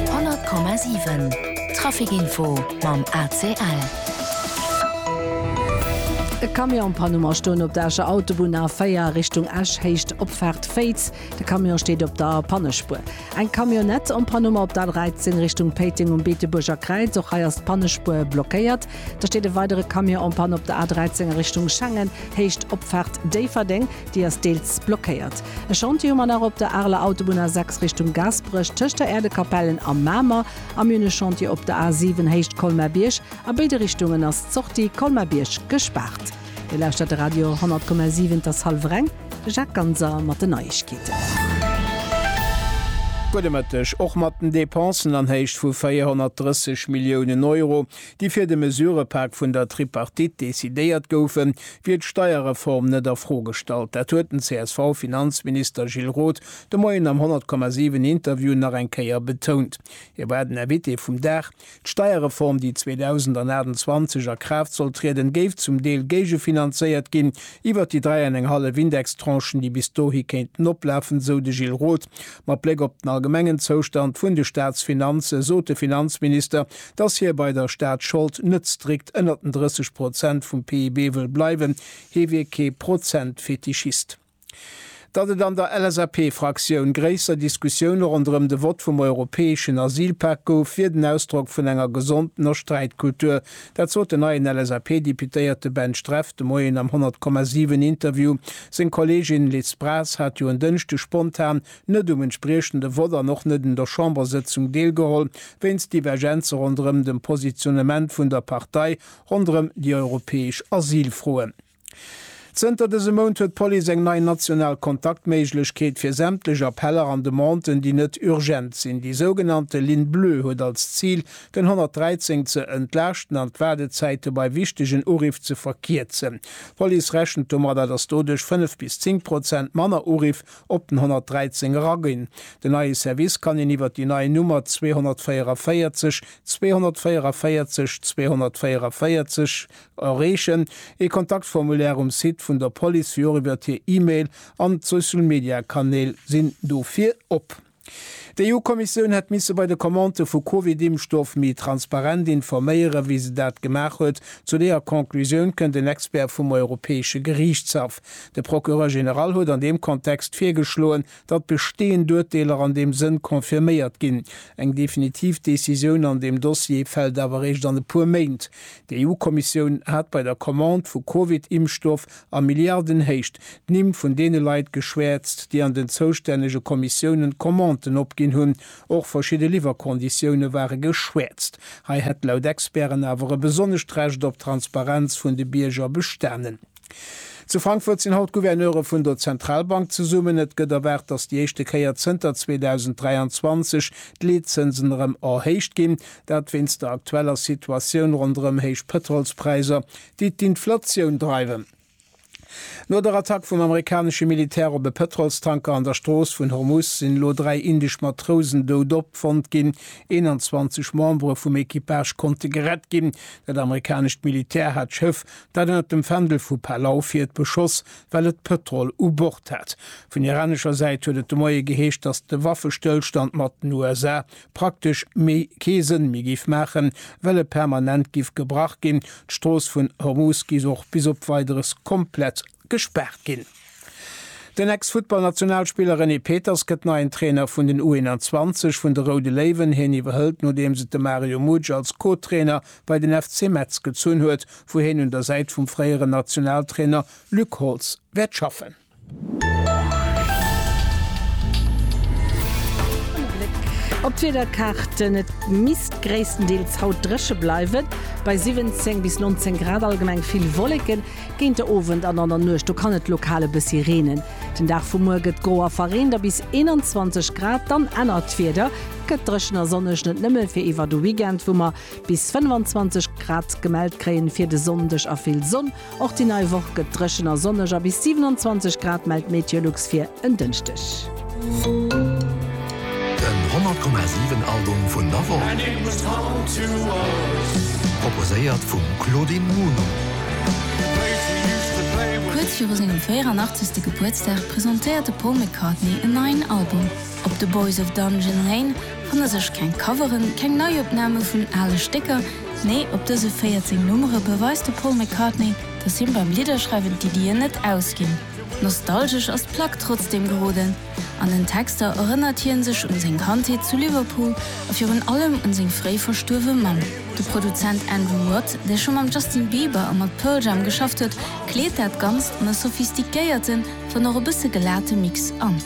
100,7 Trafic Info mam ACL. E Camion an Panne mar stoen op der Escher Autobunn A4 Richtung Esch héicht Opfaart Féiz. De Camion steet op der Pannespuer. Eng Camionnette en panne mar op der A13 Richtung Péiteng um Beetebuerger Kräiz. Och hei ass d'Pannespuer blockéiert. Da steet e weidere Camion en panne op der A 13 a Richtung Schengen, Héicht Opfaart Déifferdeng. Déi ass deels blockéiert. E Chantier hu mer nach op der Areler Autobunn A6 Richtung Gaasperech, tëscht der Äerdekapellen a Mamer. A mir hunn e Chantier op der A 7 Héicht Colmer-Bierg. A béide Richtungen ass d'Sortie Colmer-Bierg gespaart. Dir lauschtert de Radio 100,7. Et ass hallef eng. De Jacques Ganser mat den Neiegkeeten. Gudde Mëtteg. Och mat den Depensen an Héicht vu 430 Milliounen Euro déi fir de Mesurepak vun der Tripartite decidéiert goufen, wier d'Steierreform net a Fro gestallt. Dat huet den CSV-Finanzminister Gilles Roth de Moien am 100,7 Interview nach eng Kéier betount. Hie war den Invité vum Dag. D'Steierreform, déi 2028 a Kraaft soll trieden, géif zum Deel géigefinanzéiert ginn iwwer déi dräi an eng hallef Indextranchen, déi bis dohi kéinten oplafen, esou de Gilles Roth. Mat Bléck op den allgemengen Zoustand vun de Staatsfinanze sot de Finanzminister, dass hie bei der Staatsschold net strikt ënnert den 30 Prozent vum PIB wëll bleiwen, hie wier kee Prozentfetischist. Datt et an der LSAP-Fraktioun gréisser Diskussioune ronderëm de Vott vum europäeschen Asylpak gouf, wier den Ausdrock vun enger gesondener Sträitkultur. Dat sot den neien LSAP-Deputéierte Ben Streff de Moien am 100,7 Interview. Seng Kolleegin Liz Braz hat jo en Dënschde spontan net um entspriechende Vott an och net un der Chambersëtzung deelgeholl, wéinst Divergenze ronderëm dem Positionnement vun der Partei ronderëm déi europäesch Asylfroen. Zënter dësem Mount huet d'Police eng nei national Kontaktméiglechkeet fir sämtlech Appeller an Demanden, déi net urgent sinn. Déi sougenannte Ligne bleue huet als Zil, den 113 ze entlaaschten an d'Waardezäite bei wichtegen Uriff ze verkierzen. D'Police rechent domadder, datt doduerch 5 bis 10 Prozent manner Uriff Op den 113 eraginn. Den neie Service kann een iwwer déi nei Nummer 244 244 244 erreechen. Ee Kontaktformulaire um Site vun der Police wéi och iwwer hir E-Mail an d'Social-Media-Kanäl sinn dofir op. D'EU-Kommissioun hätt misse bei de Commandë vu Covid-Impfstoff méi transparent informéieren, wéi se dat gemaach huet. Zu deeër Conclusioun kënnt en Expert vum Europäesche Geriichtshaff. De Procureur général huet an deem Kontext virgeschloen, datt besteeënd Urteeler an deem Sënn confirméiert ginn. Eng definitiv Decisioun an deem Dossier fält awer eréischt an e puer Méint. D'EU-Kommissioun hat bei der Commande vu Covid-Impfstoff a Milliardenhéicht d'Nimm vun deene Leit geschwäerzt, déi an den zoustännege Kommissiounen d'Commanden opginn hunn. Och verschidde Liwwerkonditioune ware geschwäerzt. Hei hätt laut Experten awer e besonnescht Recht op Transparenz vun de Bierger bestanen. Zu Frankfurt sinn haut d'Gouverneure vun der Zentralbank zesummen. Et gëtt erwaart, datt déi éischte Kéier zënter 2023 d'Leetzënsen erëm erhéicht ginn. Dat wéinst der aktueller Situatioun ronderëm héich Pëtrolspräisser, déi d'Inflatioun dreiwen. No der Attack vum amerikanesche Militär op e Pëtrolstanker an der Strooss vun Hormuz sinn elo dräi indesch Matrousen dout opfonnt ginn. 21 Membere vum Equipage konnte gerett ginn. Dat amerikanescht Militär hat d'Schëff, dat ënnert dem Fändel vu Palau fiert, beschoss, well et Pëtrol u Bord hat. Vun iranescher Säit huet et de Moie geheescht, datt de Waffestëllstand mat den USA praktesch méi kee Sënn méi géif maachen, well e permanent giff gebrach ginn. D'Strooss vun Hormus giff och bis op Weideres komplett gespaart ginn. Den Ex-Futtballnationalspiller René Peters gëtt neien Trainer vun den U21 vun de Roude Léiwen. Hien iwwerhëlt nodeems et de Mario Mutsch als Co-Trainer bei den FC Metz gezunn huet, wou hien un der Säit vum fréieren Nationaltrainer Luc Holtz wäert schaffen. Op d'Wiederkaarten, Et misst gréisstendeels haut dréche bleiwen, bei 17 bis 19 Grad. Allgemeng vill Wolleken, géint de Owend an an der Nuecht do kann et lokal e bëssi reenen. Den Dag vu muer gëtt gro a verreent a bis 21 Grad, dann ännert d'Wieder, gëtt dréchen a sonneg, net nëmme fir iwwer de Weekend, wou mer bis 25 Grad gemellt kréien. Fir de Sonndeg a vill Sonn, Och déi nei Woch gëtt dréchen a sonneg a bis 27 Grad mellt d'Meteolux fir en Dënschdeg. Den 100,7 Album vun der Woch, proposéiert vum Claudine Muno. Kuerz viru sengem 84. Gebuertsdag presentéiert de Paul McCartney en neien Album. Op The Boys of Dungeon Lane fanne sech keng Coveren, keng Neiopname vun ale Stécker, Nee, op dëse 14 Nummere beweist de Paul McCartney, datt him beim Lidderschreiwen d'Iddien net ausginn. Nostalgesch ass d'Plack trotzdeem geroden. An den Texter erënnert hien sech un seng Kandheet zu Liverpool a virun allem un seng fréi verstuerwe Mamm. De Produzent Andrew Watt, dee scho mam Justin Bieber a mat Pearl Jam geschafft huet, kleet dat Ganzt an e sophistiquéierten, Dann och e bësse gelate Mix an.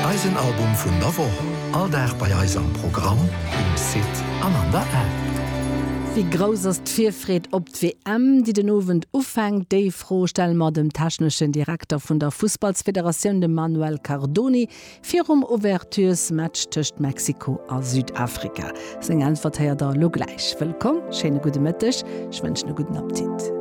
Eisen Album vun der Woch, all Dag bei eis am Programm, um Site an an der App. Wéi grouss ass d'Virfreed op d'WM, déi den Owend ufänkt? Déi Fro stelle mer dem techneschen Direkter vun der Fussballsfederatioun, dem Manuel Cardoni, virum Ouvertures-Match tëscht Mexiko a Südafrika. Seng Äntwert héiert der elo gläich. Wëllkomm, schéine gudde Mëtteg, ech wënschen e gudden Appetit.